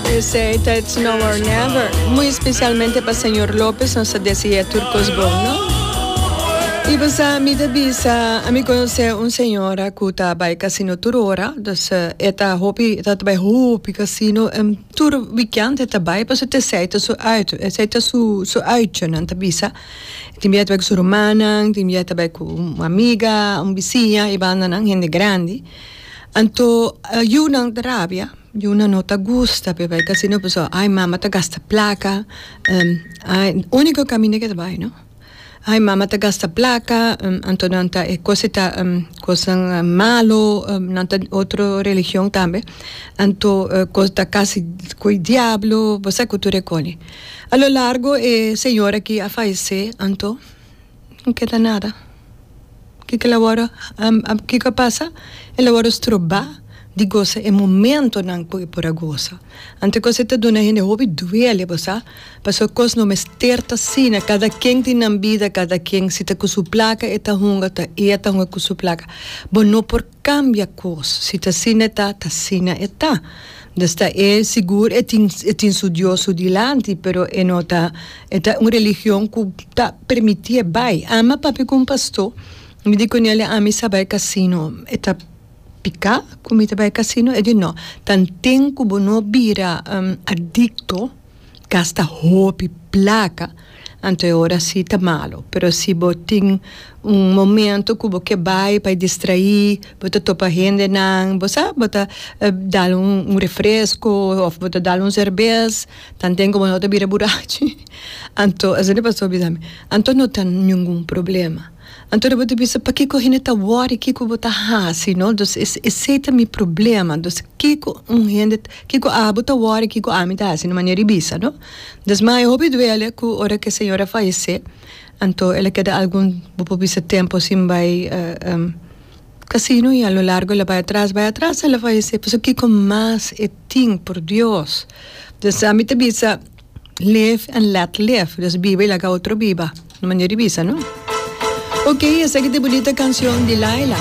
Esei ta It's Now or Never, muy specialmente pa Señor Lopez nos ta desea tur cos bon no. Y bo sa mi ta bisa a mi conoce un señora cu ta bay casino tur ora, dus e ta hopi e ta ta bay hopi casino en tur weekend e ta bay pasobra ta esei ta su uit, esei ta su su uitje nan ta bisa, tin bia e ta bay cu su rumannan, tin bia e ta bay cu un amiga, un bisiña y bandanan hende grandi, anto yu nan ta rabia. Yuna no ta gusta p'e bai casino pasobra ai mama ta gasta placa unico camino eke ta bai no ai mama ta gasta placa anto nan ta e cos eta cosnan malo nan ta otro religion tambe anto cos ta casi coi diablo bo sa cu tur e coni a lo largo e señor aki a fayece anto no keda nada kiko el a wòrdu kiko a pasa el a wòrdu strobá di gosa e momentonan ku e por a gosa anto e kos ei ta duna e hende hopi duele bo sa pasobra e kos no mester ta asina kada ken tin nan bida kada ken si ta ku su plaka e ta hunga ta e a ta hunga ku su plaka bo no por Cambia cos, si ta asina e ta, ta asina e ta. Desta e, sigur e tin, e tin su Dios su dilanti, pero e no ta, e ta un religion cu ta permiti e bay. Ama papi cu un pasto, mi di cunele, ami sa bay casino, e ta pica cu mi ta bay casino? E di no, tan tin cu bo no bira adicto. gasta hopi plaka anto e ora si ta malo pero si bo tin un momento ku bo ke bai pa e distraí bo ta topa hendenan bo sa bo ta dal un refresko òf bo ta dal un serbes tanten komo no ta bira burachi anto esei ta pasó bisa mi anto no ta ningun problema. Anto bo ta bisa pakiko hende ta wòri kiko bo ta hasi no dus es esei ta mi problema dus kiko un hende kiko abo ta wòri kiko ami ta hasi no manera di bisa no dus ma e hopi duele ku ora ke señor a fayese anto el a keda algun bo por bisa tempu sin bai kasino i a lo largo el a bai atras bai atras el a fayese pasobra kiko mas e tin por Dios dus ami ta bisa. Live and let live. Dus biba y laga otro biba. Na manera di bisa, no? Oké, esaki ta e bunita canción di Laila.